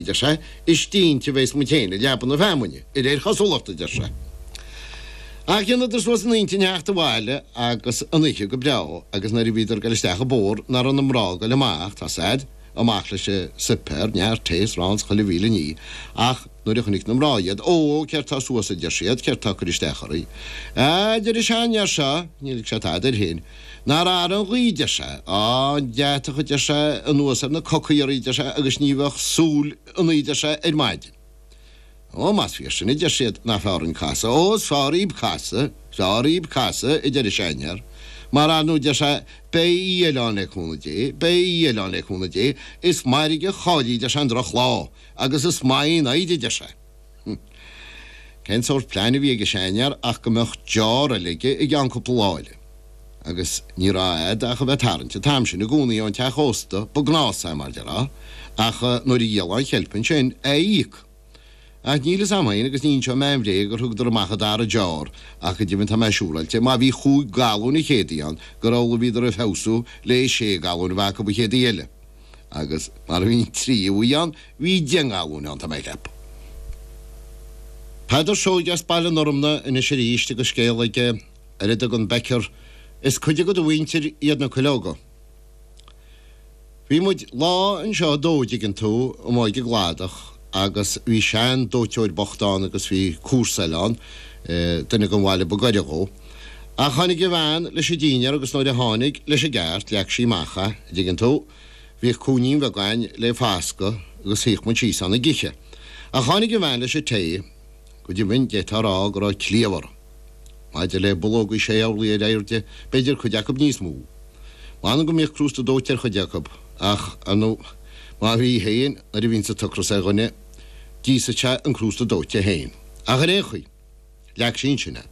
a deir sé, is cinnte a bheas muid féin i leaba na feamainne, de réir cosúlachta, a deir sé. Ach dheineadar suas a n-intinn theacht abhaile agus an oíche go breá agus nuair a bhíodar ag dul isteach an bóthar nach raibh na mná ag dul amach, tá siad, amach leis an suipéar, neart tae 's arán 's chuile mhíle ní, ach nuair a chonaic na mná iad, ó, céard tá suas a deir siad, céard tá ag cur isteach oraibh? A deir an sean-fhear seo, níor lig sé tada air féin. Nár athraigh an ghaoth, deir sé, tá an deatach, a deir sé, anuas ar na cocaí oraibh, deir sé, agus ní bheadh súil ionaibh, deir sé, ar maidin. Ó, más fíor sin, a deir siad, nach fearr an casadh, ó, is fearr dhíb casadh, is fearr dhíb casadh, a deir an seanfhear, mar ar ndú, deir sé, beidh oíche eile ann le cúnamh Dé, beidh oíche eile ann le cúnamh Dé, is mairg a chaillfí, deir sé, an drochlá, agus is maith í an fhoighid, a deir sé. Cén sórt pleain a bhí ag an seanfhear ach go mbeadh deoir eile aige i gceann cúpla lá eile. Agus ní raibh agat ach a bheith tarraingt an t-am sin i gcónaí ón teach ósta ba gnás é, mar le rá, ach nuair a dhíolfá an cheilp ansin, é a íoc. Ach níl fhios a'm féin agus ní inseoidh mé aon bhréag gur thugadar amach an dara deoir ach go deimhin tá mé siúráilte má bhí chúig galúin an chéad oíche ann gur amhlaidh bhíodar ag feabhsú le sé ghalún a bheith acu an chéad oíche eile. agus mar a bhí an tríú hoíche ann, bhí deich ngalún ann, tá mé ag ceapadh. Peadar Seoige as Baile an Fhormna anois arís agus scéal aige ar a dtugann Becker 'Is cuid de do mhuintir iad na cuileoga'. Bhí muid lá anseo ag dó, dtuigeann tú, amuigh ag an gcladach, agus bhí sean dóiteoir bocht ann agus bhí comharsa eile ann, duine den bhaile ba gaire dhó. Ach tháinig a bhean leis an dinnéar agus nuair a tháinig, leis an gceart, leag sí amach é, a' dtuigeann tú? Bhíodh cúinnín bheag ann le fascadh agus shuíodh muid síos ann ag ithe. Ach tháinig a bhean leis an tae, Go deimhin, d'fhéadfá a rá go raibh cliabhar. Maidir le bulóga sé horlaí ar airde, b'fhéidir cuid acu níos mó. M'anam go mbíodh crústa dóite ar chuid acu, ach ar ndóigh, má bhí féin, nuair a bhíonns an t-ocras ar dhuine, d'íosfadh sé an crústa dóite féin. Ach ar aon chaoi, leag sí ansin é.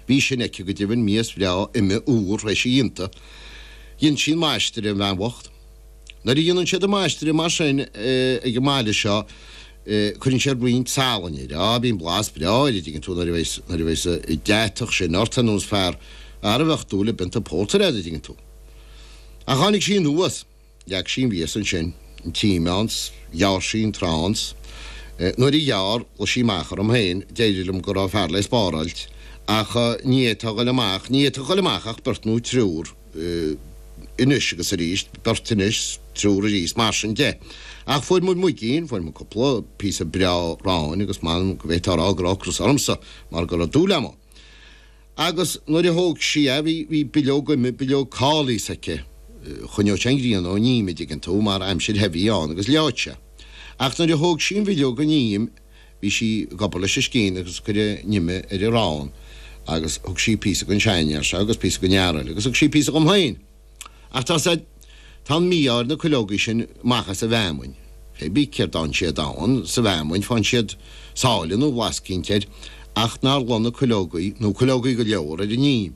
Bhí sin aici go deimhin, mias bhreá, ime, úr, th'éis a dhíonta. Dhein sí an maistreadh an bhean bhocht. Nuair a dhéanann siad an maistreadh mar sin ag an mbaile seo, Cuireann sé roinnt salainn air. Á, bíonn blas breá air, a dtuigeann tú, nuair a bheas, nuair a bheas, deatach sin ort, níos fearr thar a bheadh dúil i bpionta pórtair agat, a dtuigeann tú. Ach tháinig sí anuas, leag sí an mhias ansin, an t-im ann, 's ghearr sí an t-arán, 's nuair a ghearr, ghlaoigh sí amach orm féin, d'éirigh liom go raibh fear le spáráilt, ach ní fhéadfá a ghoil amach, ní fhéadfadh a ghoil amach ach beirt nó triúr. anois agus arís, beirt anois, triúr arís, mar sin de. Ach fuair muid muigín, fuair muid cúpla píosa breá aráin agus m'anam go bhféadfá a rá go raibh ocras ormsa mar go raibh dúil agam ann. Agus nuair a thóg sí a, bhí, bhí bileog ime, bileog cóilís aici, choinneodh sé an ghrian ón im, an dtuigeann tú, mar aimsir the a bhí ann agus leáfadh sé. Ach nuair a thóg sí an bhileog den im, Bhí sí ag obair leis an scian agus ag cur an ime ar an arán agus thug sí píosa don seanfhear seo agus píosa don fhear eile agus thug sí píosa dhom féin. Ach tá siad, tá an mí-ádh ar na cuileogaí sin amach as an bhfeamainn. Fé bith céard a fhaigheann siad ann sa bhfeamainn, faigheann siad sáile nó blas eicínt air, ach nár luigh na cuileogaí, nó cuileogaí go leor, ar an im.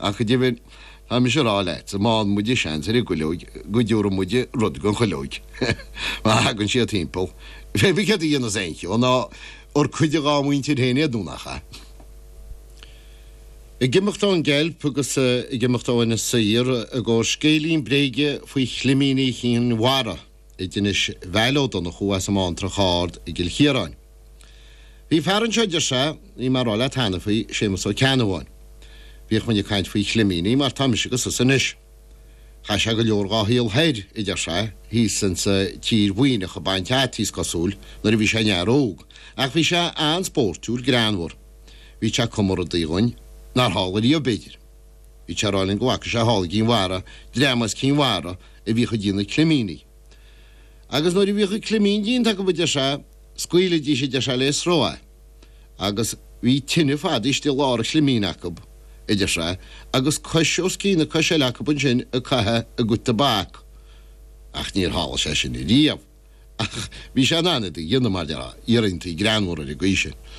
Ach go deimhin, tá mise a rá leat, má fhaigheann muide seans ar an gcuileog, go dtiúrfaidh muide rud don chuileog, má thagann siad timpeall. Fé bith céard a dhéanfas aon cheo, nó ar cuid dhá muintir féin iad nó nach ea? Ag imeacht ón gceilp agus ag imeacht ó Inis Oírr i gcomhair scéilín bréige faoi chlimíní Chinn Mhara. anois Veail Ó Donnchú as an mBantrach Ard i gCill Chiaráin. Bhí fear anseo a deir sé, bhí mé ag rá leat cheana faoi, Séamus Ó Ceannabháin. Bhíodh muid ag caint faoi chlimíní mar tá mise agus tusa anois. Chaith sé go leor dhá shaol thoir, a deir sé, thíos insa tír Mhuimhneach ag baint fhataí is cosúil, nuair a bhí sé ina fhear óg, ach bhí sé an-spóirtiúil, greannmhar. Bhíodh sé ag cumadh rudaí dhúinn nár tharla riamh, b'fhéidir. Bhí sé ag rá linn go bhfaca sé thall ag Cinn Mhara, dream as Cinn Mhara a bhíodh ag déanamh climíní. Agus nuair a bhíodh an climín déanta acu, a deir sé, scaoilidís, a deir sé, le sruth é. Agus bhí tine fadaithe istigh i lár an chlimín acu, a deir sé, agus cois os cionn na coise eile acu ansin ag caitheamh a gcuid tobac. Ach níor tharla sé sin riamh. Ach bhí sé in ann iad a dhéanamh mar, iarraidh an tí greannmhar ar an gcaoi sin.